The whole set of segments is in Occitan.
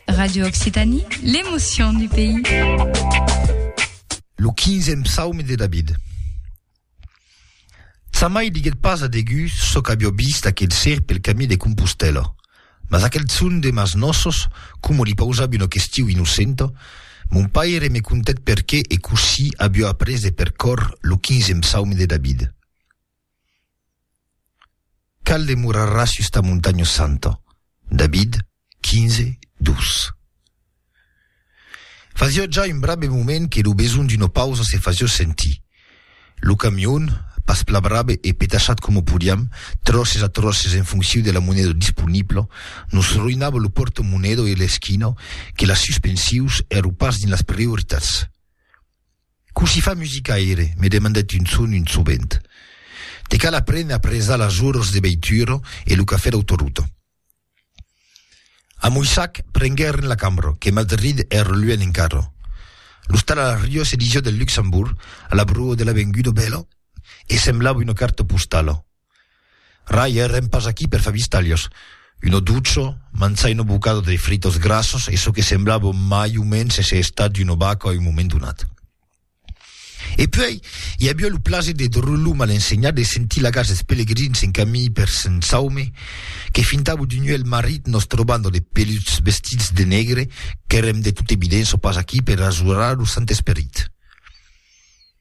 Radio Occitanie, l'émotion du pays. Lo quinzèm psaume de David. Tsamai diguèt pas a Degú çò qu'avió vist aquel ser pel camí de Compostèla, mas aquel son de mas nossos, coma li pausavi una question innocenta, Mon paire me contèt perqué e cossí avió après de percórrer lo quinzèm psaume de David. Qual demorarà sus ta montanha santa? David, 15, 2. Fasiá ja un brabe moment que lo besonh d'una pausa se fasiá sentir. Lo camion, pas pla brabe e petachat coma podiam, tròces a tròces en fonciu de la moneda disponibla, nos roinava lo pòrta-moneda e l'esquina que las suspensius èro pas dins las prioritats. Cossí fa musicaire? me demandèt un son un sovent. Te cal aprene a presar las oros de veitura e lo cafè d'autoruta. A Moissac prenguèren la cambra, que Madrid èra luènh encara. L'ostal a la Rio se disiá del Luxembourg, a la broa de l'avenguda Bèla, e semblava una carta postala. Rai, èrem pas aquí per far vistalhos. Uno ducho, mançai uno bocado de fritos grassos e çò que semblava mai o mens èsser estat d'uno baco a un moment donat. E puèi, i aviá lo plaser de Drollo mal ensenhat de sentir lagats dels pelegrins en camin per Sent Saume, que fintava d'un uèlh marrit nos trobar dans de peluts vestits de negre, qu'èrem de tota evidença pas aquí per ajorar lo Sant Esperit.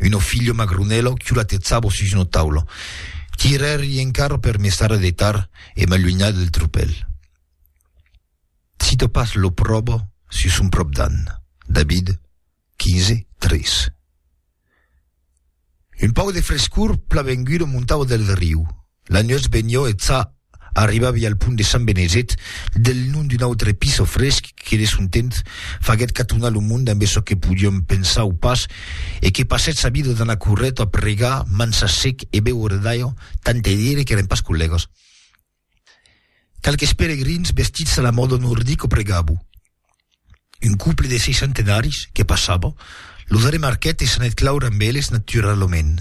Uno figlio magrunello chiulatezzavo sus uno taulo. Tirerri en carro per me stare a dettar e m'allugnar del tropel. Cito pas lo probo sus son prop d'an. David, 15, 3. Un pauc de frescor plavengudo montavo del riu, La nuèch benhò e ça arribavi al pont de Sant Benezet, del nom d'un autre piso fresc que de son temps faguèt catonar lo monde ambe çò que podiom pensar o pas e que passèt sa vida d'anar corrèt a pregar, mansar sec e béuer d'aiò, tant te dire qu'èren pas collègas. Qualques peregrins vestits a la mòda nordic o pregabo. Un couple de seiscentenaris que passava, los arremarquèt e s'anèt claure amb eles naturalament.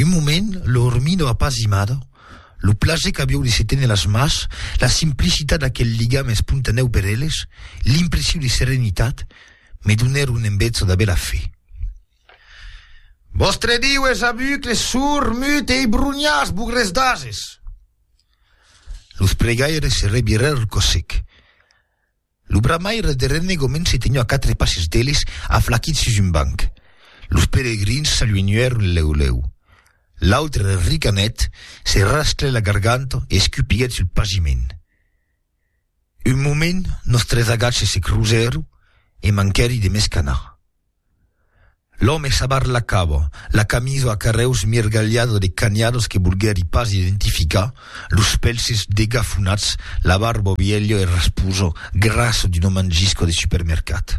Un moment, lo Ermino apazimado, lo plaser qu'avió de se téner las mas, la simplicitat d'aquel ligam espontanèu per eles, l'impressiu de serenitat, me donèron en bètza de bèla fe. Vòstre Diu es avucle, sourd, mut e ibrunhas, bugres d'ases! Los pregaires se revirèr al cossec. Lo bramaire de Renne gomenci tenho a quatre passes d'eles, aflaquit sus un banc. Los peregrins s'aluenhuèron lèu lèu. L'autre ricanèt, se rasclèt la garganta e escupiguèt sul pagiment. Un moment, nos tres agatges se crusèron e manquèri de m'escanar. L'òme s'abarlacava la camisa a carrèus mirgalhada de canhadas que volguèri pas identificar, los pèlses degafonats, la barba vièlha e rasposa, grassa d'una mangisca de supermercat.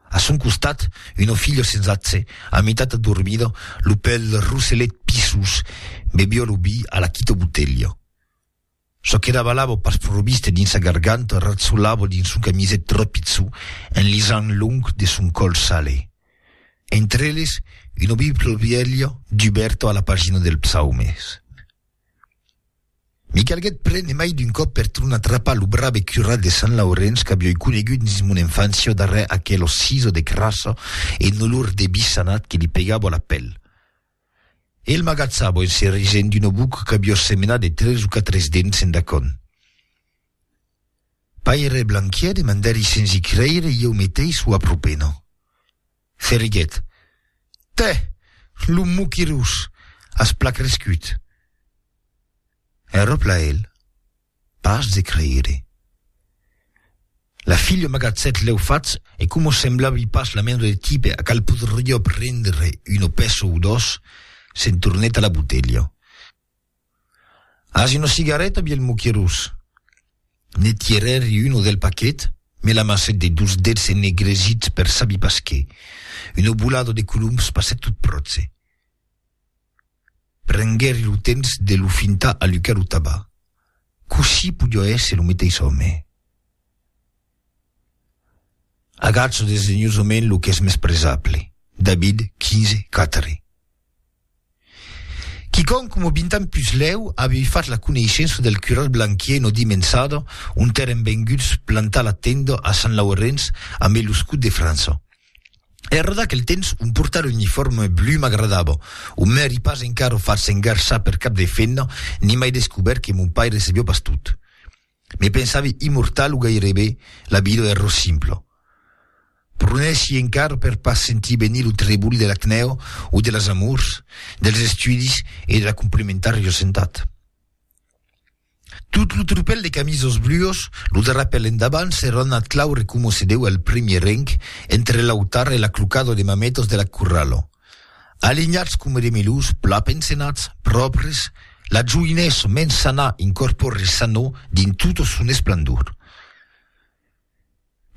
A son costat, una filha sensatge, a mitat adormida, lo pèl roselet pisós, beviá lo vi a la quita botelha. Çò que davalava pas proviste dins sa garganta ratzolava dins son camiset trapitzu en lisant long de son còl sale. Entre eles, una Bibla vièlha dubèrta a la pagina dels Psaumes. Me calguèt prene mai d'un còp per tornar atrapar lo brave curat de Sant Laurenç qu'avioi conegut dins mon enfància darrèr aquela sisa de crassa e un olor de bissanat que li pegava a la pèl. E el m'agatzava en se risent d'una boca qu'avió semenat de tres o quatres dents en dacon. Paire Blanquier, demandèri sens i creire, ieu meteis o apropena. Ferriguet. Tè! Lo moquirós! As pla crescut! Enròpla el. Pas de creire. La filha m'agatzèt lèu fach e coma semblavi pas la mena de tipe a cal podriá prendre una pèça o dos, se'n tornèt a la botelha. As una cigareta, vièlh moquerós? Ne tirèri una del paquet, me l'amassèt de dos dets ennegresits per sabi pas qué. Una bolada de coloms passèt tot pròche. Prenguèri lo temps de lo fintar alucar lo tabac, cossí podió èsser lo meteis òme. Agacho desdenhosament lo qu'es mès presable, David, quinze, quatre. Quicòm coma vint ans pus lèu avèvi fach la coneishença del cural Blanquier no dimençada ont èren venguts plantar la tenda a Sant Laurenç ambe lo scut de França. Era d'aquel temps un portal uniforme blu m'agradava. O m'èri pas encara fach s'engarçar per cap de femna, ni mai descobèrt que mon paire sabiá pas tot. Me pensavi immortal o gairebe, la vida èra simpla. Pronessi encara per pas sentir venir lo trebol de l'acnèu o de las amors, dels estudis e de la complementària sentat. Tot lo tropèl de camisos bluos, lo drapèl endavant, se ronat clau recomossedèu al primièr renc, entre l'autar e l'aclucado de mametos de la curralo. Alinhats coma de melós, plan pensenats, pròpres, la joinessa mens sanà incorpòre sanò dins tota son esplendor.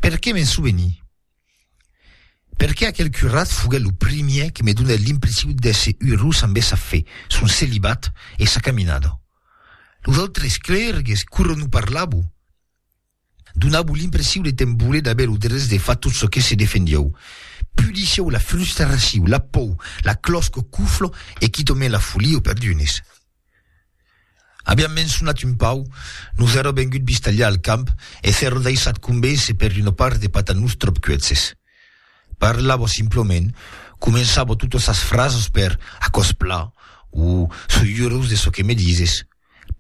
Perqué m'en soveni? Perqué aquel curat foguèt lo primièr que me donèt l'impressiu d'èsser urós amb essa fe, son celibat e sa caminada. Los autres clèrgues quora non parlavo, donavo l'impressiu de te'n voler d'aver lo drech de far tot çò que se defendieu. Pudissieu la frustraciu, la pòu, la clòsca cuflo e quitament la folia o perdunes. Aviam mençonat un pauc, nos èra vengut vistalhar al camp e s'èra daissat convéncer per una part de patanus tròp cuètzes. Parlava simplament, començava totas sas frasas per Aquò's pla o Soi urós de çò que me dises.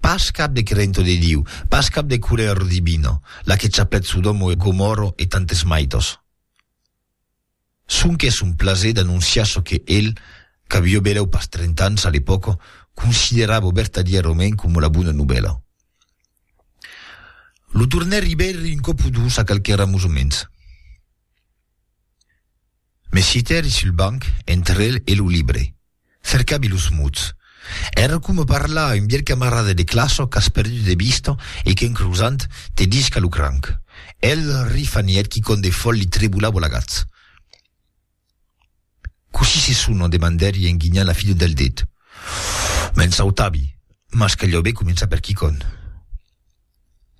Pas cap de crento de Diu, pas cap de colèra divina, la que chapèt Sodòma e Gomòrra e tantes maitas. Sonque son plaser d'anonciar çò que el, qu'avió belèu pas trenta ans a l'epòca, considerava obertadièrament coma la bona novèla. Lo tornèr Ribèri un còp o dos a qualques ramosoments. Me citèri sul banc entre el e lo libre. Cercavi los mots. Èra coma parlar a un vièlh camarada de classa qu'as perdut de vista e qu'en crosant, te disca lo cranc. El rifanièt quicòm de fòl li tremolava la gatz. Cossí se sona? demandèri en guinhant la fila del dit. Me'n sautavi, mas caliá ben començar per quicòm.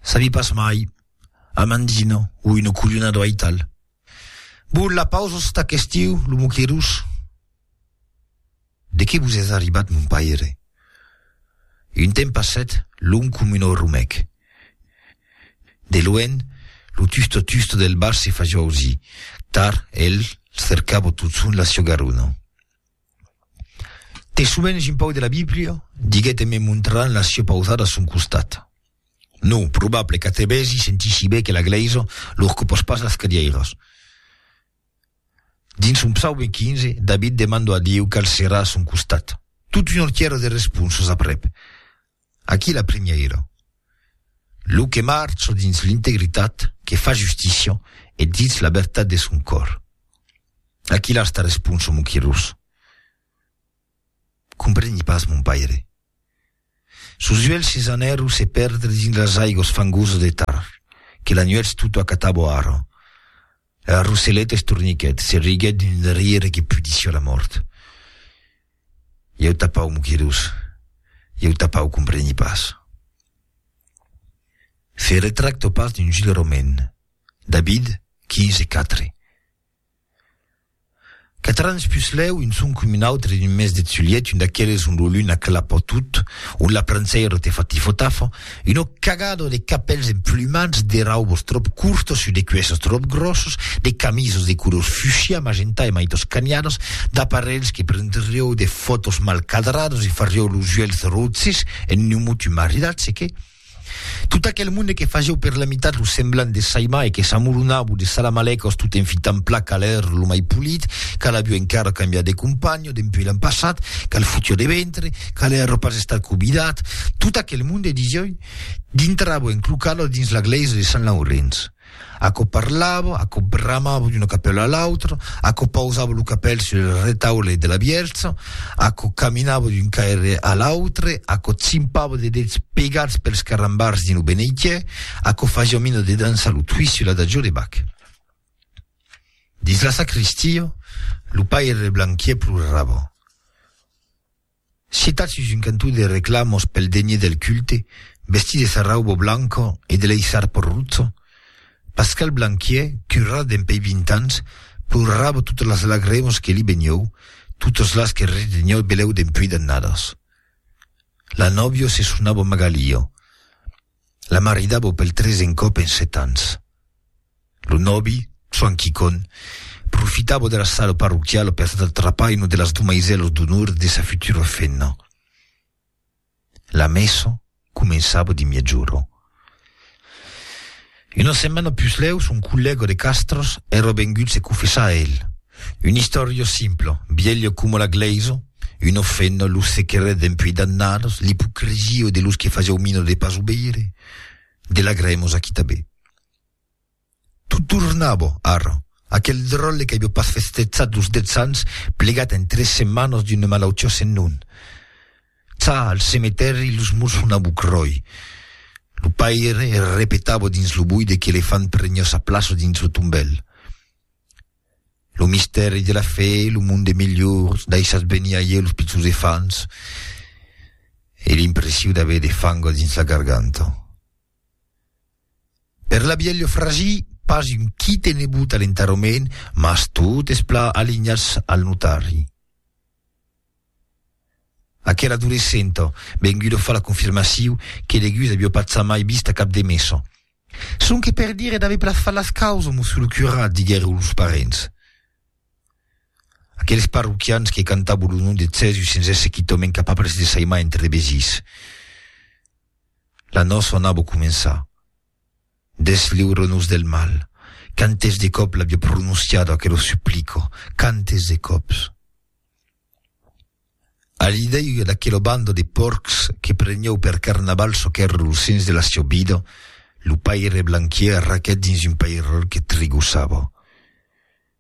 Sabi pas mai. Amandina o una colhonada o aital. Bon, la pausa s'està qu'estiu, lo moquerós. De qué vos es arribat mon paire? Un temps passèt long com un orumèc. De luènh, lo tusto tusto del bar se faja ausir, tar el cercava totson la siá garona. Te sovenhs un pauc de la Bíblia? diguèt en me montrant la siá pausada a son costat. Non, probable qu'atrevèsi sentissi bèth que la Glèisa lor copàs pas las cadièiras. Dins son psaube 15, David demando a Dieu cal serà a son costat. Tot un ortièra de responsas aprèp. Aquí la primièira. Lo que marcha dins l'integritat, que fa justícia e ditz la vertat de son còr. Aquí las ta responsa mon Quirós. Compreni pas mon paire. Sos uelhs se s'anèron se perdre dins las aigos fangosas de Tar, que la nuèch tota acatabo ara. La Rosseleta estorniquèt, se riguèt d'un rire que pudissiá la mòrt. Ieu tapau moquedos, ieu tapau compreni pas. Se retracto pas d'un Gilles Romain, David, quinze, quatre. Quatre ans pus lèu, un son com un autre d'un mes de tzulièt, un d'aqueles ont lo lun aclapa tot, ont la prançèira te fa tifotafa, una cagada de capèls emplumats, de raubos tròp curtos sus de cuèsses tròp gròsses, de camisas de colors fuchsia, magenta e mai toscaniadas, d'aparelhs que prendrieu de fòtos mal cadradas e farieu los uèlhs rotzes en un mot un maridatge que, Tot aquel monde que fasieu per la mitat lo semblant de Saima e que s'amoronavou de Salamalècos tot en fitant pla cal èr lo mai polit, cal aviu encara cambiat de companho dempuèi l'an passat, cal fotió de ventre, cal èr pas estat cobidat, tot aquel monde, disioi, dintravo en clocalo dins la glèisa de Sant Laurenç. Aquò parlava, aquò bramava d'una capèla a l'autra, aquò pausava lo capèl sul retaule de la Vierge, aquò caminava d'un caire a l'autre, aquò chimpava de dets pegats pels carrambars dins lo beneitier, aquò fasiá mina de dançar lo twist sul Adagio de Bach. Dins la sacristia, lo paire Blanquier plorava. Sitat sus un cantó de reclamos pel degné del culte, vestit de sarraubo blanco e de lei sarpo rutzo, Pascal Blanquiè, currà dempèi vint ans, plorava totes las lagremos que li benieu, totes las que retenheu beleu dempuèi d'annadas. La nòvio se sonava Magalio. La maridavo pel tresen còp en set ans. Lo nòbi, Soan Quicon, profitavo de la sala parroquiala per atrapar una de las domaisèlas d'onor de sa futura femna. La messa començava de miègjorn. Una setmana puslèu, son collèga de Castras èra vengut se confessar a el, Un istòrio simple, vielho coma la glèisa, uno fent lo secret dempuèi d'annadas, l'ipocresia de los que fasieu mina de pas o veire, de la grèmos aquí tabé. Tot tornava, ara, aquel dròlle qu'avió pas festejat los dètz ans, plegat en tres setmanas d'una malautiá sen nom. Cha, al cemetèri, los murs sonavu cròi. Lo paire repetava dins lo buide que l'elefant preniá sa plaça dins lo tombèl. Lo mistèri de la fe, lo mond de melhors, daissatz venir a ieu los pichons efants e l'impressiu d'aver de fango dins la garganta. Per la bielha fragi, pas un quite nebut a l'enterrament, mas totes plà alignats al notari. Aquel adolescent vengut de far la confirmaciu que deguts avió pas ça mai vist a cap de messa. Sonque per dire d'aver plat fat las causas mos sul curat, diguèron los parents. Aqueles parroquians que cantabon lo nom de Cèsus sens èsser quitòment capables de saimar entre de besirs. La nòça anava començar. Desliure-nos del mal. Quantes de còps l'avia prononciada aquela suplica, quantes de còps! A l'idèia d'aquela banda de pòrcs que prenieu per carnaval çò qu'èra lo sens de la siá vida, lo paire Blanquier arraquèt dins un pairèl que trigossava.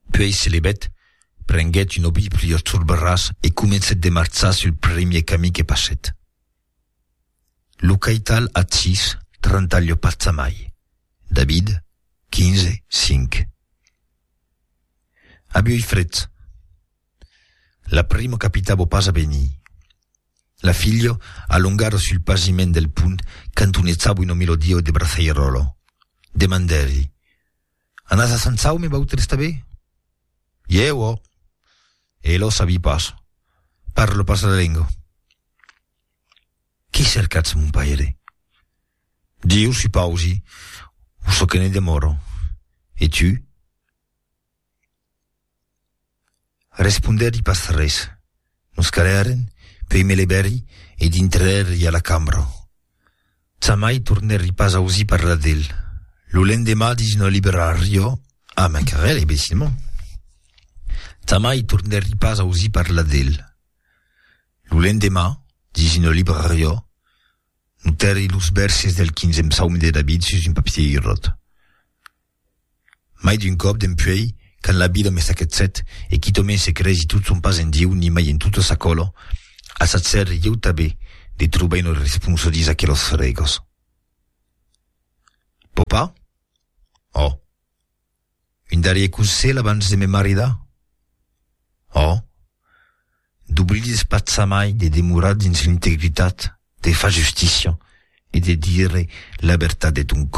Puèi se levèt, prenguèt una Bíblia turberàs e comencèt de marchar sul primièr camí que passèt. Lo caital ath sis, trantalh-lo pas amai. David, quinze, cinc. Abi oi fret. La primo capitavo pas a venir. La filho alongaro sul pasiment del pont cantonetavo ino milodio de braçairolo. Demandèri, Anas a Sant Saume vautres tabé? Ieu, ò! E lo sabi pas. Parlo pas la lengo. Qué cercatz, mon paire? Diu, supausi, o çò que ne demòro. E tu? Respondèri pas res. Nos calèren, puèi me levèri e dintrèri a la cambra. Jamai tornèri pas ausir parlar d'el. Lo lendemà dins una librariá, a Macarel, imbecilament. Jamai tornèri pas ausir parlar d'el. Lo lendemà, dins una librariá, notèri los vèrses del quinzèm psaumi de David sus un papier irròt. Mai d'un còp, dempuèi, quand la vida me saquetsèt e quitòmen se cresi tot son pas en Dieu ni mai en tota sa còla, assatgèri ieu tanben de trobar una responsa dins aquelas frègas. Pòpa? Ò! Un darrier conselh abans de me maridar? Ò! D'oblides patzamai de demorar dins l'integritat, de far justícia e de dire la vertat de ton còr.